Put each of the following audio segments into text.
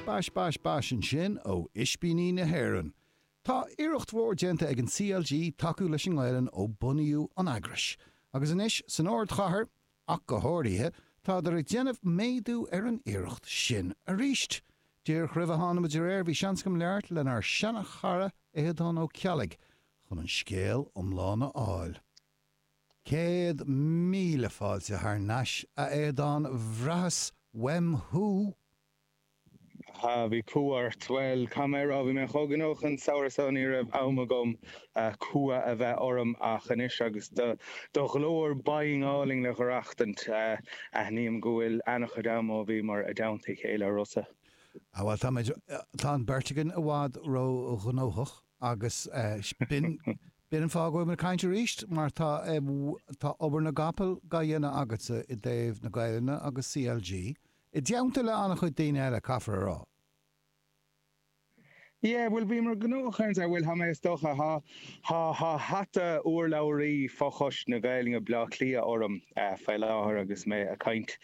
Bash bash bash ansin ó Ispíní na hÉireann. Tá iarracht mhór déanta ag an CLG tacú leis an nGaelainn ó bunaíodh an eagras, agus anois san ardchathair ach go háirithe, táthar ag déanamh méadú ar an iarracht sin arís. Díreach roimh a thánamar ar aer bhí seans agam labhairt lenár seana-chara Aodán Ó Ceallaigh chun an scéal iomlán a fháil. Céad míle fáilte thar n-ais, a Aodáin, bhraitheas uaim thú! Aha, bhí cumha ort. Bhuel, chaon a rá? Bhí mé chomh gnóthach an samhradh so ní raibh am agam cumha a bheith orm ach anois agus do ghlór binn álainn á aireachtaint, aithním go bhfuil ana-chuid ama ó bhíomar i dteannta a chéile a Rossa. Ah bhuel, táimid, tá an beirt againn i bhfad ró-ghnóthach agus b'in, B'in an fáth go bhfuilimid ag caint arís, mar tá tá obair na gcapall dá dhéanamh agatsa i dtaobh na Gaelainne agus CLG, i dteannta le an-chuid daoine eile, caithfear a rá. Yeah, bhuel, bhíomar gnóthach ann, bhuel, tá mé, is dócha, tá, tá, tá hata urlabhraí fochoiste na Gaelainne Bhleá Cliath orm faoi láthair agus mé ag caint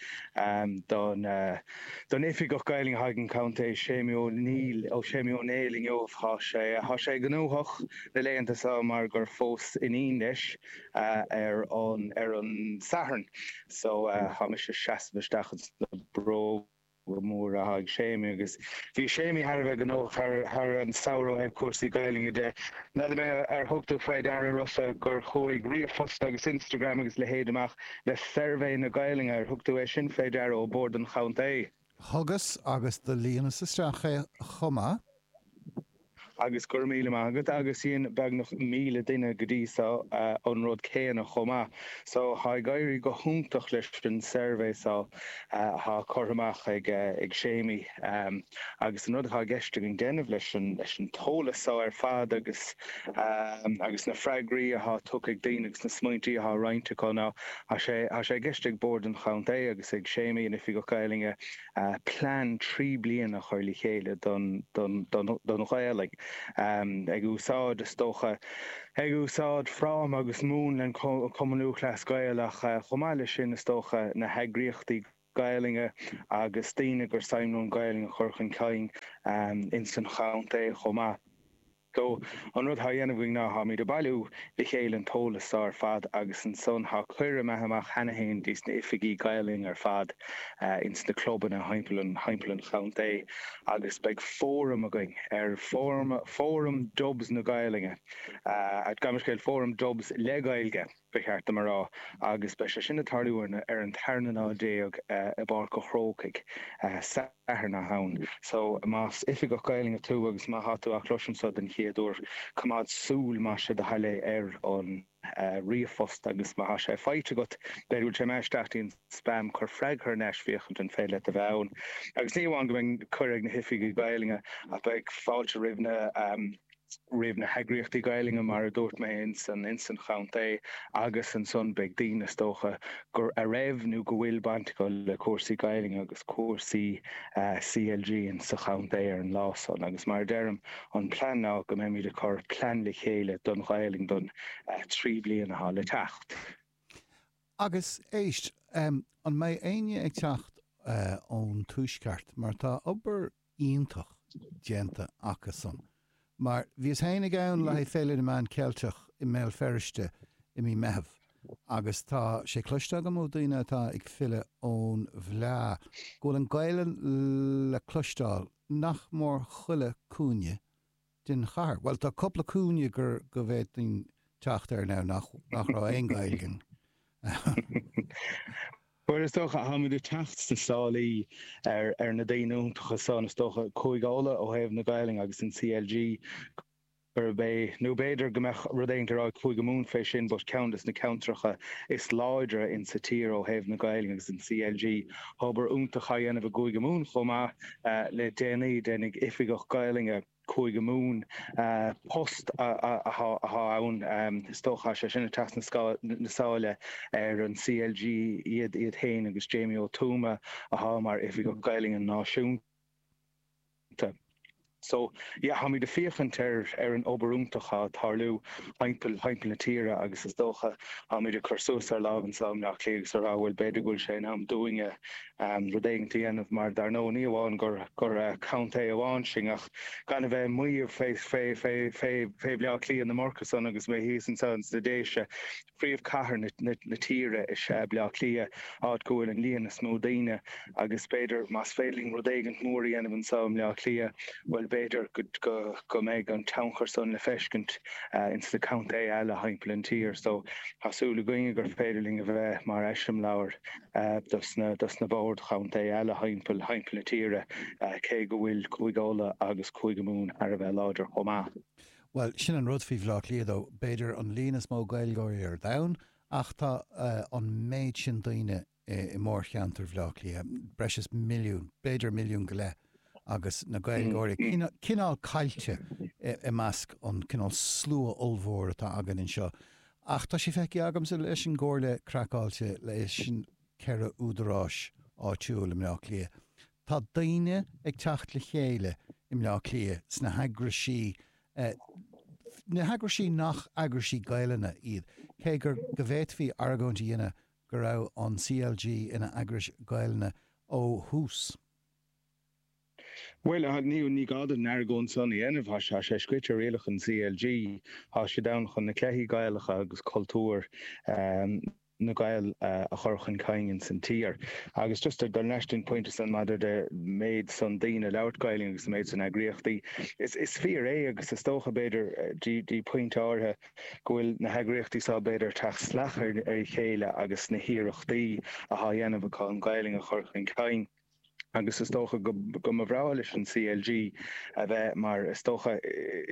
don don Oifigeach Gaelainne atá ag an gContae Séimí Ó Néill, Séimí Ó Néill inniu, tá sé, tá sé gnóthach. na laethanta seo mar gur phós iníon leis ar an Satharn so tá mise ag seasamh isteach ins na bróga móra atá ag Séimí agus bhí Séimí thar a bheith gnóthach thar an samhradh ó chúrsaí Gaeilge de. N'fheadar mé ar thug tú faoi deara Rossa gur chuaigh ríomhphost agus Instagram agus a leithéid amach le suirbhé na Gaelainne, ar thug tú é sin faoi deara, ó Bhord an Chontae? Thugas agus do líonas isteach é chomh maith. Agus go raibh míle maith agat. Agus dhein beagnach míle duine go dtí so an rud céanna chomh maith. So tá ag éirí go hiontach leis an suirbhé so atá curtha amach ag Séimí. Agus an rud atá i gceist againn déanamh leis an t-eolas so ar fad agus na freagraí atá tugtha ag daoine agus na smaointí atá roinnte acu ná Tá sé i gceist ag Bord an Chontae agus ag Séimí, an Oifigeach Gaelainne, plean trí bliana a chur le chéile don Ghaelainn, ag úsáid, is dócha, ag úsáid fráma agus múnla an Chumainn Lúthchleas Gael ach, chomh maith leis sin, is dócha, na heagraíochtaí Gaelainne agus daoine gur suim leo an Ghaelainn a chur chun cinn ins an chontae chomh maith. So, an rud thá dhéanamh againn ná tháimid a' bailiú le chéile an t-eolas so ar fad agus ansan thá cuireadh imithe amach cheana fhéin dtí's na hoifigigh Gaelainne ar fad ins na clubanna thimpeall an chontae agus beidh fóram againn ar Fóram Dubs na Gaelainne, a' gabh mo leithscéal, Fóram Dubs le Gaeilge. ba cheart dom a rá, agus beidh sé sin ag tarlú ar an tarna lá déag i bPáirc an Chrócaigh, Satharn ann. So, más oifigeach Gaelainne tú agus má tá tú á chloisint seo den chéad uair, coimeád súil, más é do thoil é, ar an ríomhphost agus má tá sé faighte agat, b'fhéidir go bhfuil sé imithe isteach i do spam, cuir freagra thar n-ais, féachaint an féidir leat a bheith ann. Agus ní amháin go mbeidh cuireadh ag na hoifigigh Ghaelainne, ach beidh fáilte roimh na. roimh na heagraíochtaí Gaelainne, mar a dúirt mé, ins an Chontae agus ansan beidh daoine, is dócha, go, a raibh nó go bhfuil baint acu le cúrsaí Gaelainne agus cúrsaí CLG ins an Chontae ar an lá san agus mar a deirim, an plean ná go mbeimid ag cur plean le chéile don Ghaelainn don trí bliana atá le teacht. Agus, éist, an mbeidh éinne ag teacht ón Tuaisceart mar tá obair iontach déanta acusan. Mar bhíos féinig ann le haghaidh Féile na Meán Ceilteach i mBéal Feirste i mí Meitheamh agus tá sé cloiste agam ó dhaoine atá ag filleadh ón bhFleá go bhfuil an Gaolainn le cloisteáil nach mór chuile cúinne den chathair. Bhuel, tá cupla cúinne gur, go bhféadfainn teacht air now nach, nach raibh aon Ghaeilg in. Bhuel, is dócha, táimid ag teacht sna sálaí ar, ar na daoine iontacha san, is dócha, Cúige Uladh ó thaobh na Gaelainne agus an CLG gurb é, nó b'fhéidir go mbeadh rud éigint le rá ag Cúige Mumhan fé sin but ceann des na ceantracha is láidre in sa tír ó thaobh na Gaelainne agus an CLG, tá obair iontach á dhéanamh i gCúige Mumhan chomh maith. Le déanaí, déanadh Oifigeach Gaolainne Chúige Mumhan, post atá ann is dócha, is é sin, ag teacht sna sála ar an CLG, iad iad féin agus Jamie Ó Tuama atá mar Oifigeach Gaolainne Náisiúnta. So, yeah, táimid ag féachaint ar an obair iontach atá ag tarlú thimpeall na tíre agus is dócha táimid ag cur suas ár lámha anseo i mBleá Cliath agus a rá, bhuel, b'fhéidir go bhfuil sé in am dúinne rud éigeant a dhéanamh mar dar ndóigh ní amháin gur contae amháin sinn ach gan a bheith ag maíomh fé Bhleá Cliath le mórtas ann agus mé thíos anseo ins na Déise, príomhchathair na tíre is ea Bleá Cliath, áit go bhfuil an líon is mó daoine agus b'fhéidir más féidir linn rud éigint mór a dhéanamh anseo i mBleá Cliath bhuel b'fhéidir go mbeidh an tionchar san le feiscint ins na contaethe eile thimpeall an tír so tá súil againne gur féidir linn a bheith mar eiseamláir. dos na boird chontae eile thimpeall na tíre, cé go bhfuil Cúige Uladh agus Cúige Mumhan thar a bheith láidir chomh maith. Bhuel, sin an rud faoi Bhleá Cliath, tá, b'fhéidir an líon is mó Gaeilgeoirí ar domhan ach tá an méid sin daoine i mórcheantar Bhleá Cliath, breis is milliún, b'fhéidir milliún go leith. agus na Gaeilgeoirí cineál caillte i measc an cineál slua ollmhór atá againn anseo. Ach tá sé feicthe agamsa leis an gComhairle Craiceáilte, leis an ceithre údaráis áitiúil i mBleá Cliath, tá daoine ag teacht le chéile i mBleá Cliath sna heagraisí, na heagraisí nach eagraisí Gaelainne iad, cé gur, go bhféadfaí argóint a dhéanamh go raibh an CLG ina eagrais Ghaelainne ó thús. Bhuel, ní gá dom an argóint san a dhéanamh, tá sé scrioite i rialacha an CLG, tá siad ann chun na cluichí Gaelacha agus cultúr na Gaeil a chur chun cinn san tír. Agus just ag dul thar n-ais dtí an pointe san maidir leis an méid san daoine ag labhairt Gaelainn agus an méid san eagraíochtaí, is fíor é agus is dócha b'fhéidir dtí pointe áirithe, go bhfuil na heagraíochtaí seo, b'fhéidir, ag teacht salach ar a chéile agus na hiarrachtaí athá á dhéanamh acu an Ghaelainn a chur chun cinn. Agus is dócha go mba bhreá leis an CLG a bheith, mar is dócha,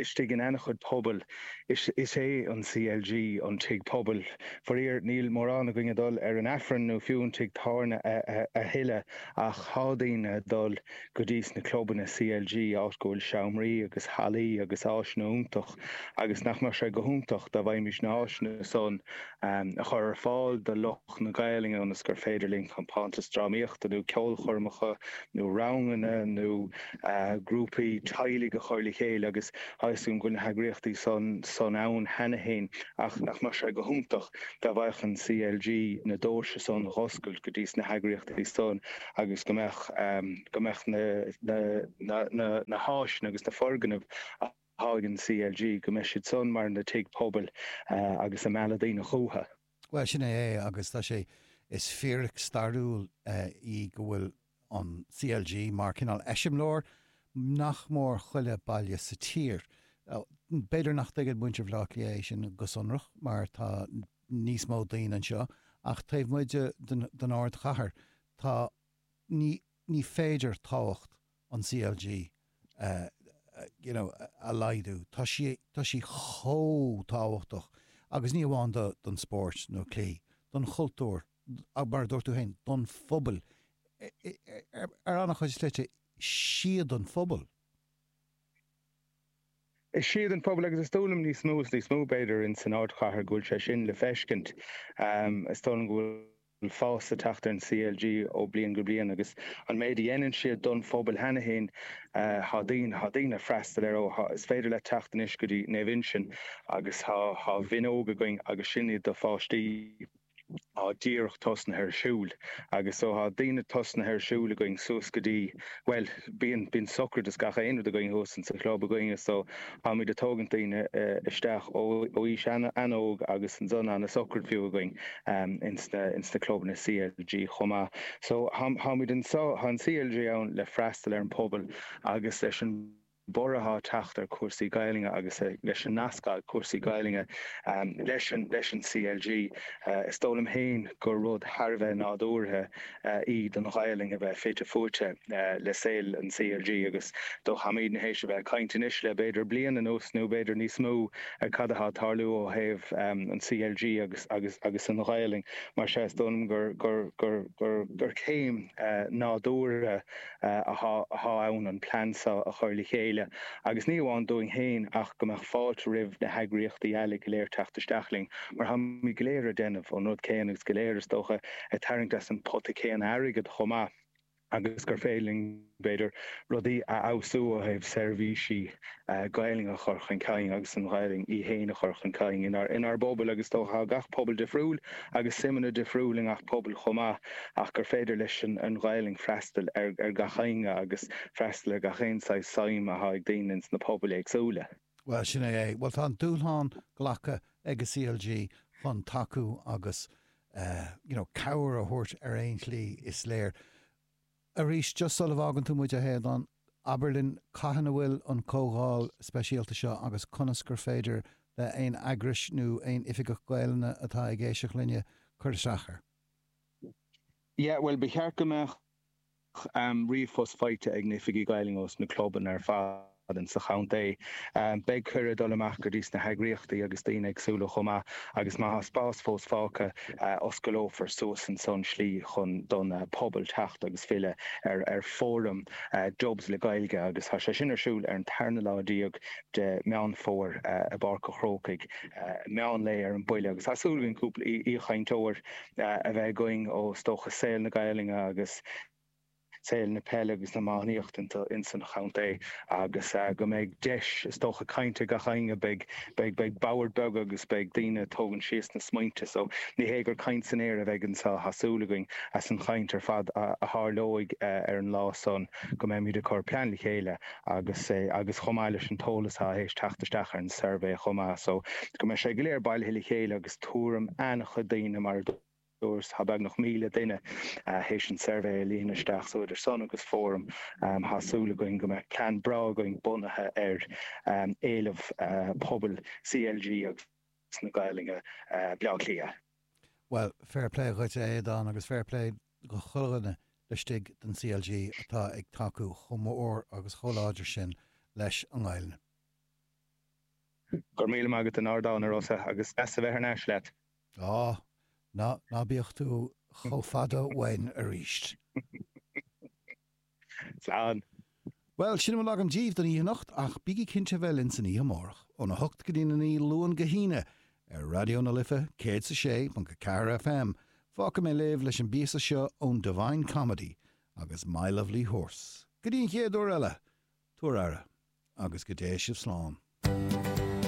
istigh in ana-chuid pobail. Is é an CLG an tigh pobail. Faraor, níl mórán againn ag dul ar an Aifreann nó fiú an tigh tábhairne a thuilleadh, ach thá daoine ag dul. go dtí sna clubanna CLG áit go bhfuil seomraí agus hallaí agus áiseanna iontach agus nach mbeadh sé go hiontach dá bhféadfaimis na háiseanna san a chur ar fáil do lucht na Gaelainne ionas gur féidir linn compántas drámaíochta nó ceolchoirmeacha nó ranganna nó grúpaí teaghlaigh a chur le chéile agus tá fhios againn go bhfuil na heagraíochtaí san ann cheana féin ach nach mbeadh sé go hiontach dá bhféadfadh an CLG na doirse san dh'oscailt go dtí sna heagraíochtaí san agus go mbeadh go mbeadh na háiseanna agus na foirgnimh athá ag an CLG, go mbeidh siad san mar na tigh pobail agus ag mealladh daoine chucha. Bhuel, sin é é agus tá sé, is fíric stairiúil í go bhfuil an CLG mar cineál eiseamláir nach mór chuile baile sa tír. B'fhéidir nach dtuigeann muintir Bhaile Átha Cliath é sin go sonrach mar tá, níos mó daoine anseo, ach taobh amuigh den ardchathair, tá, ní, ní féidir tábhacht an CLG a, you know, a laghdú. Tá sí, tá sí chomh tábhachtach agus ní amháin do, don spóirt nó cluichí, don chultúr, mar a dúirt tú féin, don phobail, ar an-chuid slite, is iad an phobail. Is iad an pobal, agus is dóigh liom níos mó is níos mó, b'fhéidir, in san ardchathair, go bhfuil sé sin le feiscint. Is dóigh liom go bhfuil fás ag teacht ar an CLG ó bliain go bliain agus an méid a dhéanann siad don phobal cheana fhéin, tá daoine, tá daoine ag freastal air ó, tá, is féidir leat teacht anois go dtí Naomh Uinseann agus tá, tá Mionóg againn agus sin é do pháistí. Tá díreach tosnaithe ar siúl. Agus so tá daoine tosnaithe ar siúl againn suas go dtí, bhuel, bíonn, bíonn socraid is gach aon rud againn thuas in sa chlub againne so táimid ag tógaint daoine isteach ó aois an-óg agus ansan an socraid fiú againn ins na, ins na clubanna CLG chomh maith. So tá, táimid anseo, tá an CLG ann le freastal ar an bpobal agus leis an. borradh á teacht ar chúrsaí Gaelainne agus leis an nasc ag cúrsaí Gaelainne leis an CLG, is dóigh liom féin gur rud thar a bheith nádúrtha í don Ghaelainn a bheith fite fuaite le saol an CLG agus táimid tar éis a bheith ag caint anois le b'fhéidir bliain anuas nó b'fhéidir níos mó ar cad atá ag tarlú ó thaobh an CLG agus an Ghaelainn. Mar sin, is dóigh liom gur céim nádúrtha. atá ann an plean seo a chur le chéile, agus ní amháin dúinn féin ach go mbeadh fáilte roimh na heagraíochtaí eile go léir teacht isteach linn, mar táimid go léir ag déanamh an rud céanna agus go léir, is dócha, ag tarraingt as an pota céanna airgid chomh maith, agus gur féidir linn, b'fhéidir, rudaí a fheabhsú ó thaobh seirbhísí Gaelainn a chur chun cinn agus an Ghaelainn í féin a chur chun cinn inár bpobail agus is dócha tá gach pobal difriúil agus suimeanna difriúil i ngach pobal chomh maith ach gur féidir leis an Ghaelainn freastal ar gach éinne agus freastal ar gach aon saghas suim atá ag daoine ins na pobail éagsúla. Bhuel, sin é é. Bhuel, tá an dúshlán glactha ag an CLG chun tacú agus, you know, cabhair a thabhairt ar aon tslí, is féidir. Arís, just sul a bhfágann tú muid, a Aodhán, abair linn cathain a bhfuil an comhdháil speisialta seo agus conas gur féidir le aon eagrais nó aon oifigeach Gaelainne atá ag éisteacht linne cur isteach air. Yeah, bhuel, ba cheart go mbeadh ríomhphost faighte ag na hoifigigh Ghaelainne os na clubanna ar fad. atá ins an chontae. Beidh cuireadh ag dul amach go dtí sna heagraíochtaí agus daoine éagsúla chomh maith agus má tá spás fós fágtha, osclófar suas ansan slí chun don phobal teacht agus freastal ar fóram Dubs le Gaeilge agus tá sé sin ar siúl ar an tarna lá déag de Mheán Fómhair i bPáirc an Chrócaigh, meán lae ar an bpointe agus tá súil againn cúpla aoichainteoir a bheith againn ó is dócha saol na Gaelainne agus. saol na peile agus na iománaíochta ins an chontae agus go mbeidh deis, is dócha, cainte ag gach éinne. Beidh boird bheaga agus beidh daoine ag tógaint síos na smaointe so ní hé gur caint san aer a bheidh anseo. Tá súil againn as an chaint ar fad a tharlóidh ar an lá san go mbeimid ag cur plean le chéile agus agus chomh maith leis an t-eolas atá tar éis teacht isteach ar an suirbhé chomh maith so go mbeidh sé go léir bailithe le chéile agus tuairim an-chuid daoine mar a Dúirt beagnach 1,000 duine théis an suirbhé a líonadh isteach so idir sin agus Fóram, 'Tá súil againn go mbeidh plean breá againn bunaithe ar éileamh pobail CLG agus na Gaeilge, Baile Átha Cliath. Bhuel, fair play dhuit a Aodán agus fair play do chuile dhuine laistigh den CLG atá ag tacú chomh mór agus chomh láidir sin leis an nGaeilne. Go raibh míle maith agat as an ardán, a Rossa, agus deas a bheith thar n-ais leat. Á, ná, ná bíodh tú chomh fada uainn arís. Slán. Bhuel, sin a bhfuil agam díbh don oíche anocht, ach bígí cinnte a bheith linn san oíche amárach, óna hocht go dtína naoi, Luan go hAoine, ar Raidió na Life, céad is a sé ponc a ceathair FM. Fágfaidh mé sibh leis an bpíosa seo ón Divine Comedy agus My Lovely Horse. Go dtí an chéad uair eile, tugaigí aire, agus go dté sibh slán.